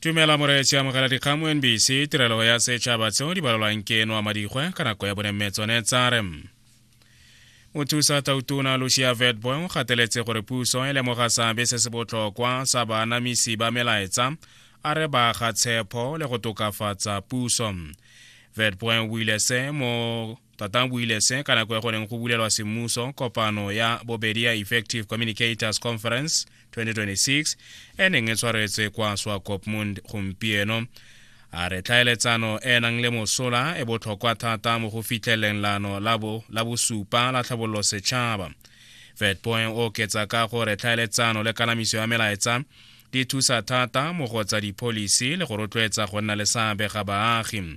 tumela moreetsi amogela dikgamo nbc tirelo ya setšhaba tseo di balolwang ke noa madikgwe ka nako ya bonemme tsone tsare mothusa tautona lucia vetboy o gateletse gore puso e lemoga seabe se se botlhokwa sa baanamisi ba melaetsa a re ba ga tshepo le go tokafatsa puso vetboy o buile se mo tatang buile se ka nako ya go neng go bulelwa semmuso kopano ya bobedi ya effective communicators conference 2026 e neng e tshwaretswe kwa swakopmund gompieno a re tlhaeletsano e e nang le mosola e botlhokwa thata mo go fitlheleng lano la bosupa la tlhabololo setšhaba fedpoint o oketsa ka gore tlhaeletsano le kanamiso ya melaetsa di thusa thata mo go tsa dipholisi le go rotloetsa go nna le seabe ga baagi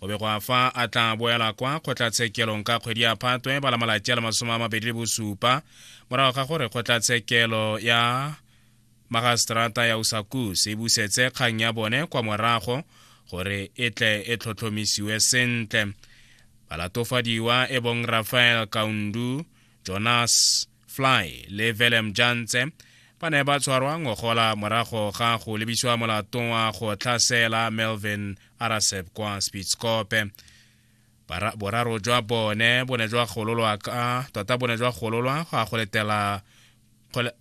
go be go a fa a tla boela kwa kgotlatshekelong ka kgwedi ya phatwe bala malatsi a le masome a mabedi le bosupa morago ga gore kgotlatshekelo ya magastrata ya usakus e busetse kgang ya bone kwa morago gore e tle e tlhotlhomisiwe sentle balatofadiwa e bong rafael kaundu jonas Fly le Willem Jantse ba ne ba tshwarwa ngogola morago ga go lebisiwa molato wa go tlhasela Melvin Arasep kwa Spitskope boraro jwa bone bo ne jwa gololwa ka tota bo ne jwa gololwa go a go letela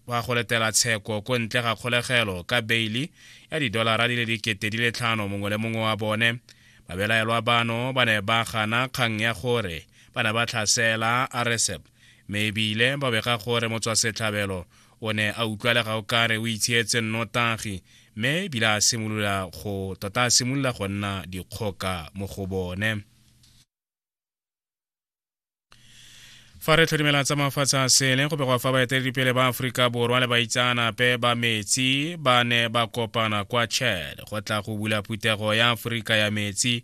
wa go letela tsheko ko ntle ga kgolegelo ka beili ya didolara di le dikete di le tlhano mongwe le mongwe wa bone babelaelwa bano ba ne ba gana kgang ya gore ba ne ba tlhasela aresep me ebile ba bega gore motswasetlhabelo o ne a utlwalega o kare o itshietse nnotagi mme ebile a simolola go tota a simolola go nna dikgoka mo go bone fa re tlhodimela tsa mafatshe a sele go begwa fa baeteledipele ba aforika borwa le baitsaanape ba metsi ba ne ba kopana kwa chad go tla go bula phuthego ya aforika ya metsi